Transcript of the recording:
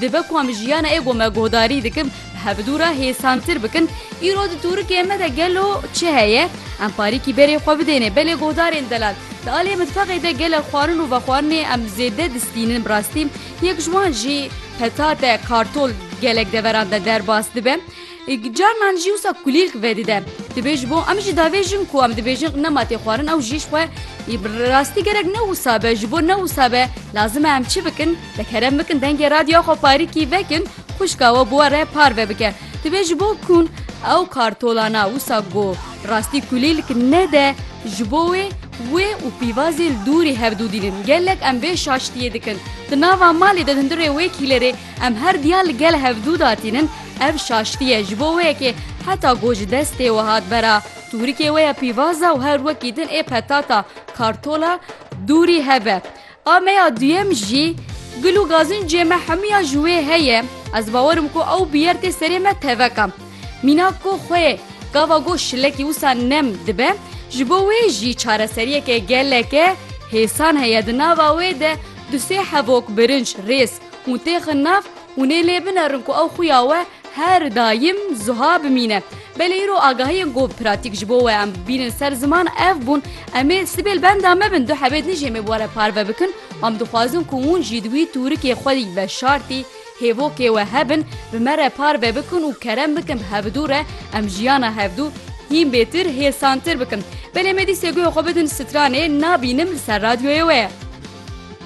Dibe ku em jiyana ê ku me guhdarî dikin bi hevdu re hêsantir bikin. Îro di tûrikê me de gelo çi heye? Em parîkî berê xwe bidêne belê guhdarên delal. Di aliyê mitfexê de gelek xwarin û vexwarinê em zêde distînin bi rastî. Yek ji wan jî petate, kartol gelek deveran de derbas dibe. Êk carinan jî wisa kulîlk vedide. Divê ji bo em jî davêjin ku em dibêjin nema tê xwarin ew jî ji xwe yî bi rastî gerek ne wisa be ji bo ne wisa be lazim e em çi bikin te kerem bikin dengê radyoya xwe parîkî vekin xwişka we bi we re parve bike. Divê ji bo kûn ew kartolana wisa ku rastî kulîlk nede ji bo wê wê û pîvazê li dûrî hev dûdînin. Gelek em vê şaştiyê dikin. Di nava malê de hundirê wê kîlerê Em her diya li gel hev dû da tînin, ev şaştî ye ji bo wê yekê heta ku ji destê we hat vera, tûrikê we ya pîvaza û her wekî din ê petata, kartola, dûrî hebe. A me ya duyem jî gul û gazincê me hemûya ji wê heye, ez bawer im ku ew bi yer tê serê me teveka. Mîna ku xwe yê gava goş şilekî wisa nem dibe, ji bo wê jî çareseriyeke geleke hêsan heye di nava wê de du sê hevok birinc, rêz, Hûn têxin nav, hûn ê lê binerin ku ew xuya we her daîm zuha bimîne. Belê îro agahiyên ku pratîk ji bo we em bînin ser ziman ev bûn, Em ê sibê li benda me bin, du hebê dijê me bi we re parve bikin. Em dixwazin ku hûn jî di wî tûrikê xwe yî veşartî hêvokê we hebin, bi me re parve bikin û kerem bikin bi hevdu re em jiyana hevdu hîn bêtir hêsantir bikin. Belê me dîsê guhê xwe bidin stranê nabînim li ser radyoyê we ye.